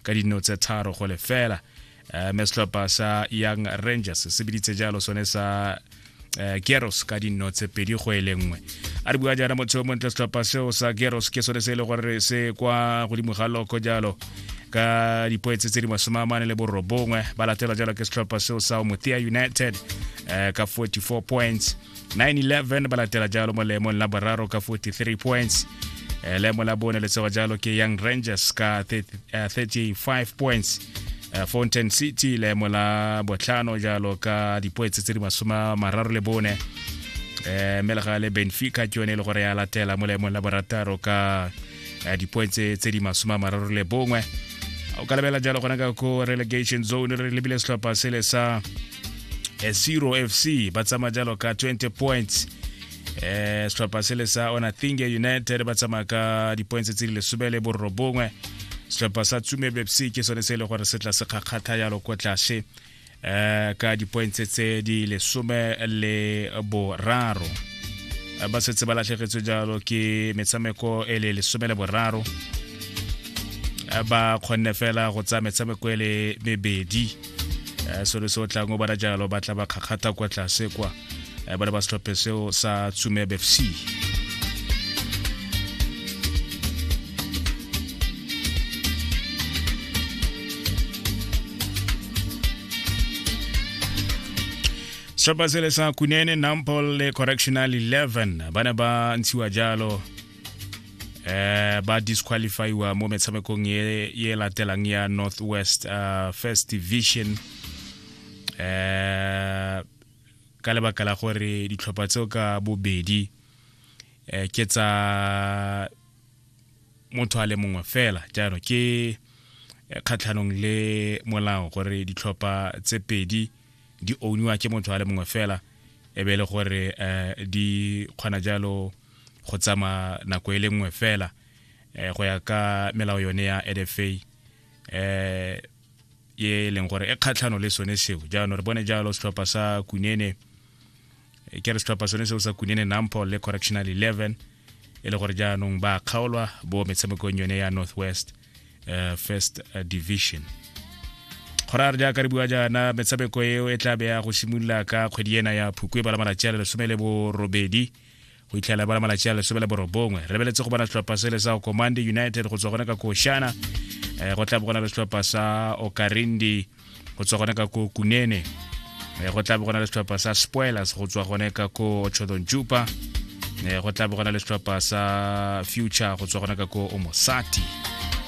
ka dino tse tharo go lefela um me setlhopha sa young rangers se biditse jalo sone sa um geros ka dino tse pedi go e lengwe a re bua jaana motho yo montle setlhopha seo sa geros ke sone se e le gore se kwa godimo ga loko jalo ka dipoetse tse di masome a mane le borobongwe ba latelwa jalo ke setlhopha seo sa omothea united um ka 44 points 9-11 ba latela jalo mo leemong la boraro ka 43 points eh, leemo la bone le tsewa jalo ke young rangers ka 35 eh, points eh, fountain city leemo la botlhano jalo ka dipoetse tse di masoma mararo le bone um mme le ga le benfica ke yone e le gore ya latela mo leemong la borataro ka eh, dipoe tse tse di masome a mararo le bongwe o ka lebela jalo gona ka ko relegation zone re lebile setlhopha sele sa eh, zero fc ba tsamaya jalo ka 20 points eh setlhopha sele sa onathinge united ba tsamaya ka dipoints tse di lesome le borobongwe setlhopha sa tsume bepsi ke sone se e le gore se tla se kgakgatha jalo ko tlase eh, ka dipointse tse di lesome le boraro eh, ba setse ba latlhegetswe jalo ke metshameko e le lesome le boraro eh, ba kgonne fela go tsaya metshameko e le mebedi selo se o tlang o bana jalo ba tla ba kgakgatha kwa tlase kwa eh, ba le ba setlhophe seo sa tsumeb f c setlhopha sele sa kunene nampol le correctional 11 ba ne ba ntshiwa jalo eh ba disqualifyiwa mo metshamekong ye ye latelang ya northwest uh, first division eh ka lebaka la gore ditlhopha tseo ka bobedi um ke tsa motho a le mongwe fela jalo ke eh, kgatlhanong le molao gore ditlhopha tse pedi di owniwa ke motho a le mongwe fela e be e le gore um di kgona jalo go tsama nako e le nngwe fela um go ya ka melao yone ya edfa um e leng gore e kgatlhano le sone seo jaanong re bone jalo setlhopha sa kunene e ke re setlhopha sone seo sa kunene nampol le correctional 11 e le gore jaanong ba kgaolwa bo metshamekong yone ya northwest uh, first eh, division go ra re jaaka re bua jaana metshameko eo e tla beya go simolola ka kgwedi ena ya phukwe ba la malatsi a le lesome le borobedi go itlhela bola malatsi a lesome le borobongwe re beletse go bona setlhopha se le sa command united go tswa gone ka koshana eh, go tla bo gona le setlhopha sa okarindi go tswa gone ka ko kunene eh, go tla bo gona le setlhopha sa spoilers go tswa gone ka ko ochodon jupa eh, go tla bo gona le setlhopha sa future go tswa gone ka ko omosati